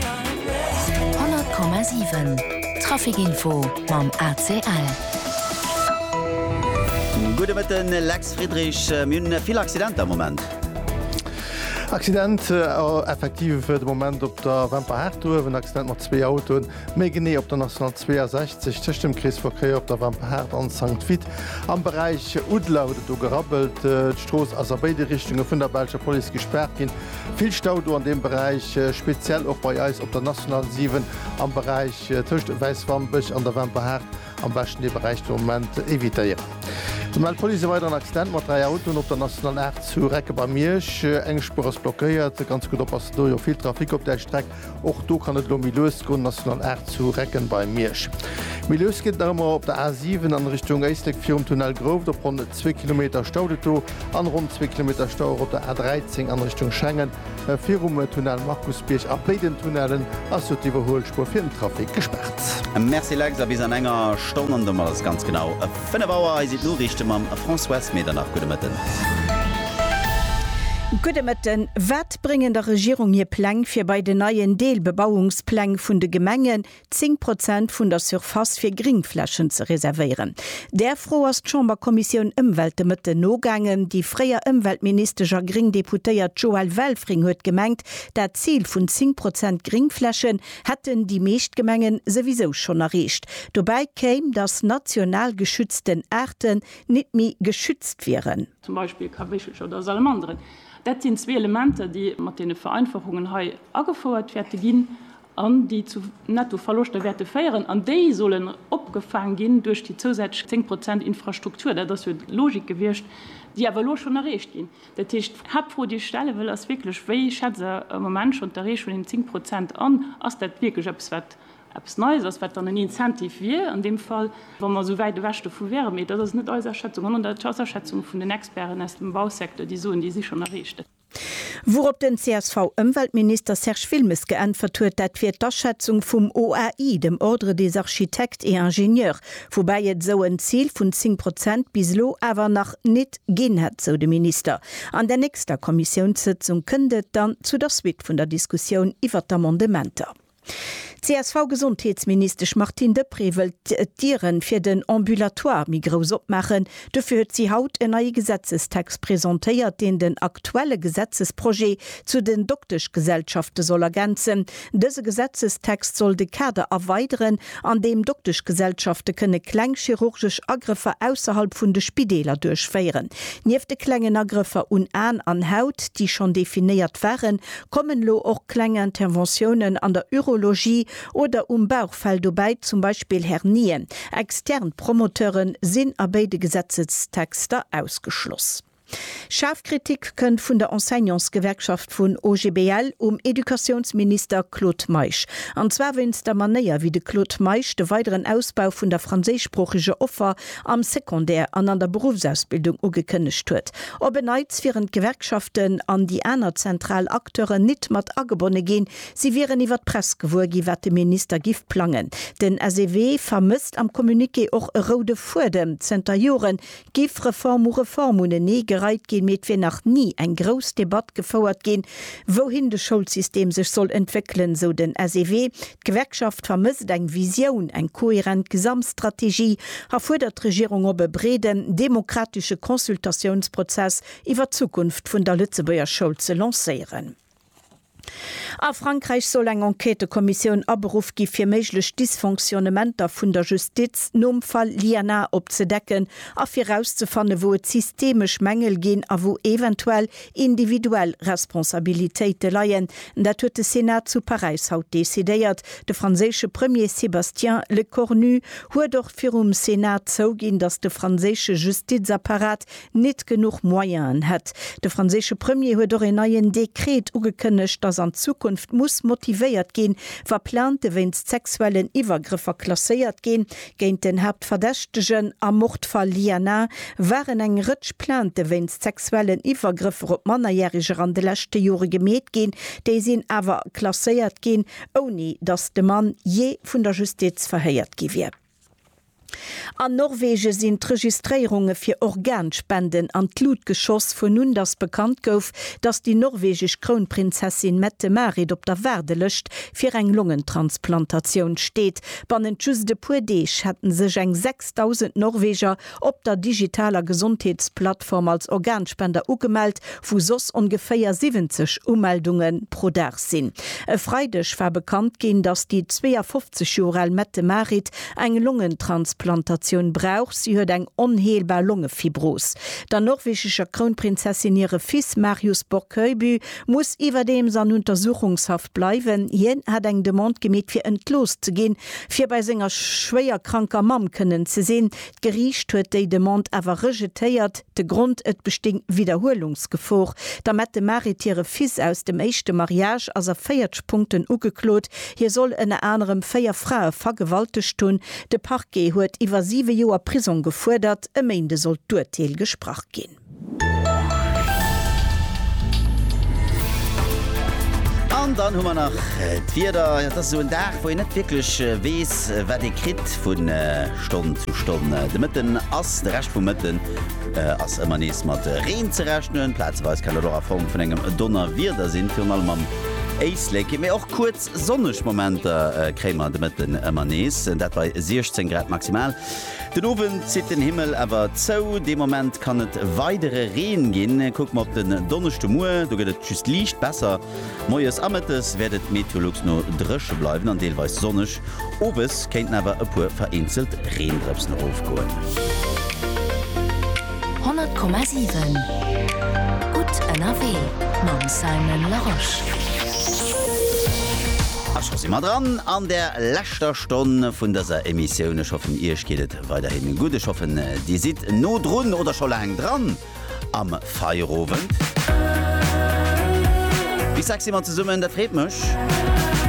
100,7 Traficinfo mam ACL. Gudde Mëtten, Lex Friedrich. Mir hunn vill Accidenter am Moment. Accident effektiv de Moment op der Wemper Haardduerf. En Accident mat zwee Autoen, méi genee op der National 62 tëscht dem Kreesverkéier op der Wemper Haard an Sankt Vith. Am Beräich Uddler huet et do gerabbelt. D'Strooss ass a béide Richtunge vun der belscher Police gespaart ginn. Vill Stau do an deem Beräich, speziell och bei eis op der National 7 am Beräich tëscht Wäiswampech an der Wemperhaart. Am beschten dee Beräich de Moment evitéieren. Et mellt d'Police e weideren Accident mat dräi Autoen op der National 8 zu Recke bei Miersch. Eng Spuer ass blockéiert. Ganz gutt oppassen, do jo vill Trafic op där Streck. Och do kann et elo méi lues goen, National 8 zu Recken bei Miersch. Méi lues geet et nach ëmmer op der A 7 an Richtung Éislek virum Tunnel Grouft. Op ronn zwee Kilometer staut et do an ronn zwee Kilometer Stau och op der A 13 an Richtung Schengen. Virum Tunnel Markusbierg a béi den Tunnellen ass do d'Iwwerhuelspuer fir den Trafic gespaart. Merci Lex, a bis an enger Stonn an domat ass ganz genau 5 Auer. Hei sinn d'Noriichte mam Françoise Medernach. Gudde Mëtten. Gudde Mëtten. Wat Dowéinst bréngen der Regierung hir Pläng fir bei den neien Deelbebauungspläng vun de Gemengen 10 Prozent vun der Surface fir Gringflächen ze reservéieren. Där Fro ass d'Chamberkommissioun Ëmwelt de Mëtten nogaangen. Déi fréier Ëmweltministesch a gréng Deputéiert Joëlle Welfring huet gemengt, dat Zil vun 10 Prozent Gringflächen hätten déi meescht Gemengen souwisou schonn erreecht. Dobäi kéim, datt national geschützten Aarten nit méi geschützt wieren. Zum Beispill Kawéchelcher oder Salamanderen. Dat sinn zwee Elementer, déi mat deene Vereinfachungen hei agefouert wäerte ginn an déi zu Nettoverloschter wäerte féieren. An déi sollen opgefaang ginn duerch déi zousätzlech zéng Prozent Infrastruktur. Dat ass jo d'Logik gewiescht, déi awer elo schonn erreecht ginn. Dat heescht, d'Haaptfro, déi ech stelle wëll, ass wierklech, Wéi schätzt Der am Moment schonn d'Erreechung vun deenen zéng Prozent an? Ass dat wierklech eppes, wat eppes Neies ass, wat dann en Incentive wier an deem Fall, wa mer esou wäit ewech dovu wäeren. Mee dat ass net eis Aschätzung, sondern dat ass d'Aschätzung vun den Experten aus dem Bausecteur, déi soen, déi si schonn erreecht. Wourop den CSV-Ëmweltminister Serge Wilmes geäntwert huet, dat wier d'Aschätzung vum OAI, dem Ordre des architectes et ingénieurs, woubäi et esou en Zil vun 10 Prozent bis elo awer nach nit ginn hätt, sou de Minister. An der nächster Kommissiounssëtzung kënnt et dann zu der Suite vun der Diskussioun iwwert d'Amendementer. D'CSV-Gesondheetsministesch Martine Deprez wëllt d'Diere fir den Ambulatoire méi grouss opmaachen. Dofir huet si haut en neie Gesetzestext presentéiert, deen den aktuelle Gesetzesprojet zu den Dokteschgesellschafte soll ergänzen. Dëse Gesetzestext soll de Kader erweideren, an deem Dokteschgesellschafte kënne kleng chirurgesch Agrëffer ausserhalb vun de Spideeler duerchféieren. Nieft de klengen Agrëffer un Aen an Haut, déi schonn definéiert waren, Kommen elo och kleng Interventiounen an der Urologie oder um Bauchfell dobäi, zum Beispill Hernien? Extern Promoteuren sinn a béide Gesetzestexter ausgeschloss. Schaarf Kritik kënnt vun der Enseignantsgewerkschaft vun OGBL um Educatiounsminister Claude Meisch. An zwar wéinst der Manéier, wéi de Claude Meisch de weideren Ausbau vun der franséischsproocheger Offer am Secondaire an an der Beruffsausbildung ugekënnegt huet. Op en Neits wieren d'Gewerkschaften an déi aner zentral Acteuren nit mat agebonne ginn. Si wieren iwwer d'Press gewuer gi wat de Minister giff plangen. Den SEW vermësst am Communiqué och e roude Fuedem. Zënter Joren giff Reform u Reform unenee gereit ginn, mee et wier nach ni eng grouss Debatt gefouert ginn, wouhin de Schoulsystem sech soll entwéckelen, sou den SEW. D'Gewerkschaft vermësst eng Visioun, eng kohärent Gesamtstrategie a fuerdert d'Regierung op, e breeden demokratesche Consultatiounsprozess iwwer d'Zukunft vun der Lëtzebuerger Schoul ze lancéieren. A Frankräich soll eng Enquêtëkommissioun aberuff gi fir méiglech Dysfonctionnementer vun der Justiz nom Fall Lienna opzedecken a fir erauszefannen, wou et systemesch Mängel ginn a wou eventuell Individuell Responsabilitéite leien, dat huet de Senat zu Paräis haut decidéiert. De franséische Premier Sébastien Lecornu huet och virum Senat zouginn, datt de franséische Justizapparat nit genuch Moyenen hätt. De franséische Premier huet och een neien Dekret ugekënnegt, datt an Zukunft muss motivéiert ginn, wa Plaintë wéinst sexuellen Iwwergrëffer klasséiert ginn. Géint den Haaptverdächtegen am Mordfall Lienna waren eng Rëtsch Plainte wéinst sexuellen Iwwergrëffer op Mannerjäreger an de leschte Jore gemeet ginn. Déi sinn awer klasséiert ginn, ouni datt de Mann jee vun der Justiz verhéiert gi wier. An Norwege sinn d'Registréierunge fir Organspenden an d'Lut geschoss, vun un datt bekannt gouf, datt déi norwegesch Krounprinzessin Mette-Marit op der Waardelëscht fir eng Longentransplantatioun steet. Bannent just e puer Deeg hätten sech eng 6.000 Norweger op der digitaler Gesondheetsplattform als Organspender ugemellt, wou soss ongeféier 70 Umeldunge pro Dag sinn. E Freideg war bekannt ginn, datt déi 52 Joer al Mette-Marit eng Longentransplantatioun brauch. Si huet eng onheelbar Longefibros. Der norwegescher Krounprinzessin hire Fils Marius Borg Høiby muss iwwerdeems an Untersuchungshaft bleiwen. Hien hat eng Demande gemeet fir entlooss ze ginn, fir bei senger schwéier kranker Mamm kënnen ze sinn. D'Geriicht huet déi Demande awer rejetéiert. De Grond, et bestéing Widderhuelungsgefor. D'Amette Marit hire Fils aus dem éischte Mariage ass a 40 Punkten ugeklot. Hie soll ënner anerem véier Frae vergewaltegt hunn. De Parquet huet iwwer siwe Joer Prisong gefuerdert. E Méinde sollt d'Urteel gesprach ginn. An dann hu mer nach d'Wieder. Dat ass esou en Dag, wou een net wierklech weess, wat ee kritt vu Stonn zu Stonn. De Mëtten ass, de Rescht vum Mëtten ass ëmmer nees mat Reen ze rechnen. Plazeweis kann dat och a Form vun engem Donnerwieder sinn, virun allem am Éislek. Mee och kuerz sonneg Momenter kréie mer de Mëtten ëmmer nees, dat bei 16 Grad maximal. Den Owend zitt den Himmel awer zou, dee Moment kann et weidere Reen ginn. Kucke mer op den Donneschdemuer, do gëtt et just liicht besser. Moies a Mëttes wäert et Meteolux no dréche bleiwen an deelweis sonneg, owes kéinten awer e puer vereenzelt Reendrëpsen erofgoen. 100,7 Gutt ënnerwee mam Simon Larosche. A scho si mer dran an der. leschter Stonn vun dëser Emissioun. Ech hoffen Iech geet et weiderhin gutt. Ech hoffen Dir sidd no drun oder scho laang dran am Feierowend. Wie sexy mat zesummen, dat freet mech.